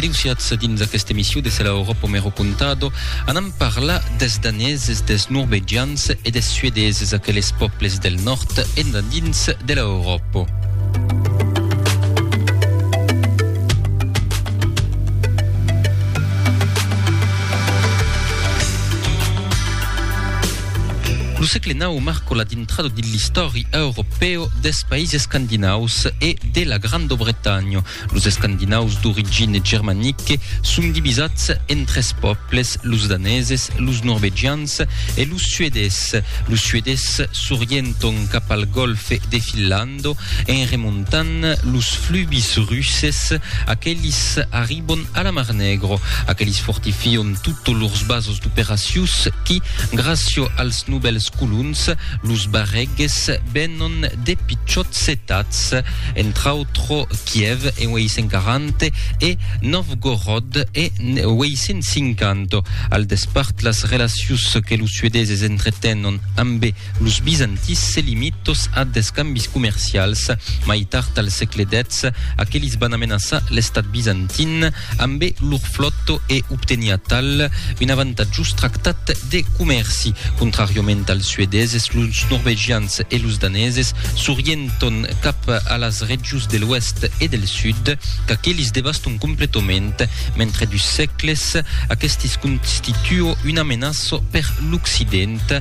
Aliusiatz dins aquesta emission de Sela Europa me ro contado, anam parlar des daneses, des norvegians e des suedeses, aqueles pòbles del nòrd endandins de la Europa. Lo sègle nau marcò la dintrada dins l'istòri europèu dels païses escandinaus e de la Granda Bretanha. Los escandinaus d'origine germanique son divisats en tres pòbles, los daneses, los norvegians e los suedés. Los suedés s'orienton cap al Gòlfe de Finlanda. Quando, en remontant los flubis russes, aquelis arribon a la Mar Negro, aquelis fortifion tot lors basos d'operacius qui, gracio als nobels colons, los barreges, venon de pichòts cetats, entr'autro Kièv en 840 e Novgorod en 850. Al despart, las relacius que los suedeses entretenon ambe Los bizantins se limitos a d'escambis comercials. Mai tard al sègle xix, aquelis van amenaçar l'estat bizantin ambe lor flòta e obteniá tal un avantatjós tractat de comèrci. Contràriament als suedeses, los norvegians e los daneses s'orienton cap a las regions de l'oèst e del sud, qu'aquelis devaston completament, mentre dus sègles aquestis constituo una menaça per l'occident.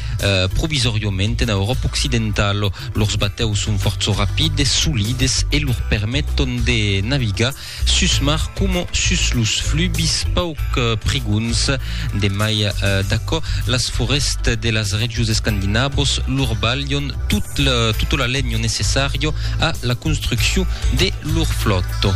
Provisòriament ena Euròpa occidentala, lors batèus son fòrça rapides, solides e lor permeton de navigar sus mar coma sus los flubis pauc prigons. De mai d'aquò, las forèstes de las regions escandinavos lor balhon tota la lenha necessària a la construccion de lor flòta.